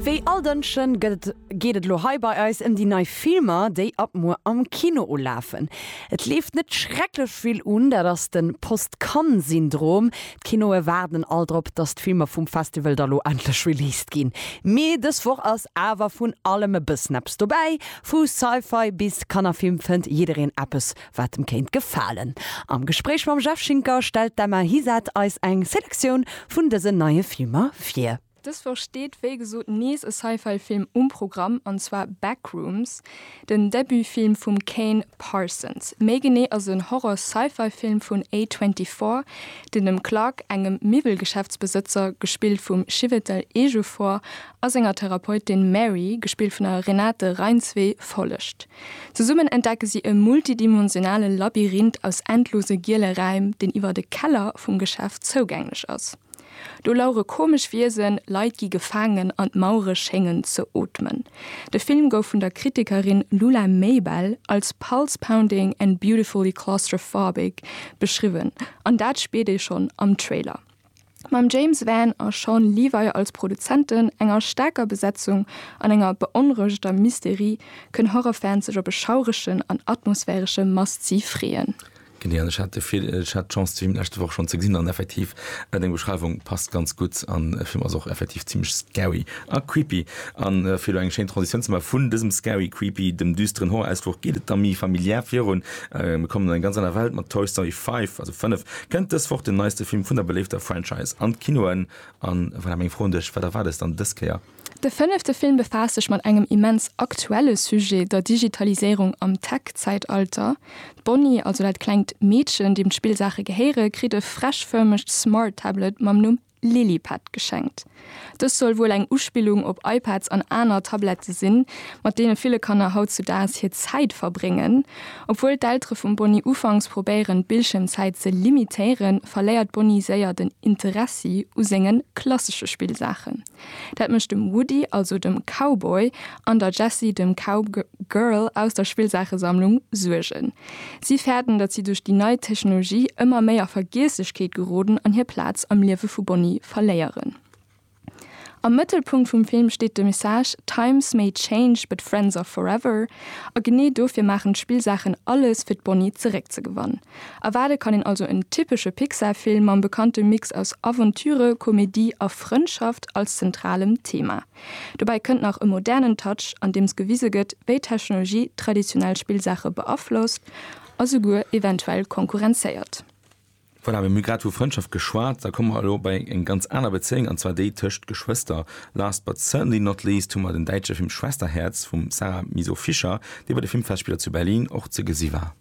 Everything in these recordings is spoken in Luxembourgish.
Wéi all Dënschen gëtt geet et elo hei bei eis em déi nei Filmer déi ab muer am Kino ulafen. Et leeft net schrecklech vill un, dat ass den Post Cannes Syndrom. D'Kinoe waarden all drop dass d'Filmer vum Festival da lo endlech released ginn. Mee dës Woch ass awer vun allem e bëssen eppes dobäi. Vu Sci-Fi bis Kannerfilm fënnt jiddereen eppes wat em kéint gefalen. Am Gespréich mam Jeff Schinker stellt d'Emma Hisette eis eng Selektioun vun dësen neie Filmer vir. Dës Woch steet wéi gesot nees e Sci-Fi Film um Programm, an zwar Backrooms, den Debutfilm vum Kane Parsons. Méi genee ass et en Horror-Sci-Fi Film vun A24, deen dem Clark, engem Miwwelgeschäftsbesëtzer, gespillt vum Chiwetel Ejiofor, a senger Therapeutin Mary, gespillt vun der Renate Reinsve, follegt. Zesummen entdecke si e multidimensionale Labyrinth aus endlose giele Räim, deen iwwert e Keller vum Geschäft zougänglech ass. Do lauere komesch Wiesen, Leit gi gefaangen an d'Mauere schéngen ze ootmen. De Film gouf vun der Kritikerin Lula Maybell als pulse-pounding and beautifully claustrophobic beschriwwen, an dat spiert ee schonn am Trailer. mam James Van a Shawn Levy als Produzenten, enger staarker Besetzung an enger beonrouegeter Mysterie, kënn Horrorfans sech op e schauregen an atmosphäresche Must-See freeën. Genee, an ech hat de vill, ech hat d'Chance de Film leschte Woch schonn ze gesinn an effektiv, deng Beschreiwung passt ganz gutt an de Film ass och effektiv zimmlech scary a creepy. An fir elo eng schéin Transitioun ze maachen, vun dësem scary, creepy, dem düsteren Horror-Ausfluch geet et da méi familiär virun, mir kommen an eng ganz aner Welt mat Toy Story 5, also 5, Kënnt dës Woch den neiste Film vun der beléifter Franchise an d'Kinoen? A voilà meng Fro un dech, Wat erwaart eis dann dës Kéier? De fënnefte Film befaasst sech mat engem immens aktuelle Sujet, der Digitaliséierung am Tech-Zäitalter. D'Bonnie, also dat klengt Meedchen, deem d'Spillsaache gehéiere, kritt e freshförmegt Smart-Tablet mam Numm Lilipad geschenkt. Dës soll wuel eng Uspillung op iPads an aner Tablette sinn, mat deene ville Kanner hautzudaags hir Zäit verbréngen. Obwuel d'Eltere vum Bonnie ufanks probéieren, d'Bildschiermzäit ze limitéieren, verléiert d'Bonnie séier den Interessi u senge klassesche Spillsaachen. Dat mécht dem Woody, also dem Cowboy, an der Jessie, dem Cowgirl, aus der Spillsaachesammlung Suergen. Si fäerten, datt si duerch déi nei Technologie ëmmer méi a Vergiesslechkeet geroden an hir Plaz am Liewe vu Bonnie verléieren. Am Mëttelpunkt vum Film steet de Message Times may change, but friends are forever. A genee dofir maachen d'Spillsaachen alles, fir d'Bonnie zeréckzegewann. Erwaarde kann een also en typesche Pixar-Film mam bekannte Mix aus Aventüre, Komedie a Frëndschaft als zentralem Thema. Dobäi kënnt nach e modernen Touch, andeems gewise gëtt, wéi d'Technologie traditionell Spillsaache beaflosst a souguer eventuell konkurrenzéiert. Voilà, mir hu grad vu Frëndschaft geschwat, da komme mer elo bei eng ganz aner Bezéiung, an zwar déi tëscht Geschwëster. Last but certainly not least hu mer den däitsche Film Schwesterherz vum Sarah Miso-Fischer, dee bei de Filmfestspiller zu Berlin och ze gesi war.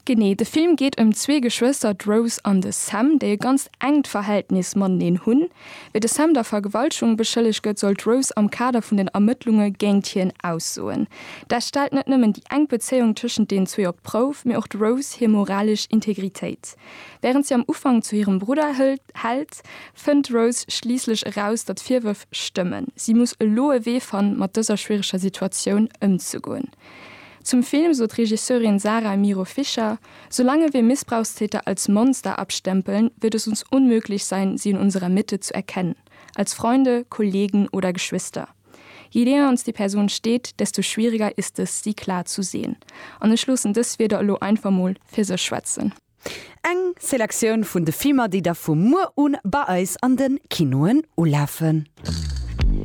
Genee, de Film geet ëm zwee Geschwëster, d'Rose an de Sam, déi e ganzt enkt Verhältnis mateneen hunn. Wéi de Sam der Vergewaltegung beschëllegt gëtt, soll d'Rose am Kader vun den Ermëttlunge géint hien aussoen. Dat stellt net nëmmen déi enk Bezéiung tëschent deenen zwee op d'Prouf, mee och d'Rose hir moralesch Integritéit. Wärend si am Ufank zu hirem Brudder hält, fënnt d'Rose schliisslech eraus, datt d'Virwërf stëmmen. Si muss elo e Wee fannen, mat dëser schwiereger Situatioun ëmzegoen. Zum Film sot d'Regisseurin Sara Miro Fischer, Solange wir Missbrauchstäter als Monster abstempeln, wird es uns unmöglich sein, sie in unserer Mitte zu erkennen, als Freunde, Kollegen oder Geschwister. Je näher uns die Person steht, desto schwieriger ist es, sie klar zu sehen. An ech loossen dës Wierder elo einfach mol fir sech schwätzen. Eng Selektioun vun de Filmer, déi da vu muer u bei eis an de Kinoen ulafen.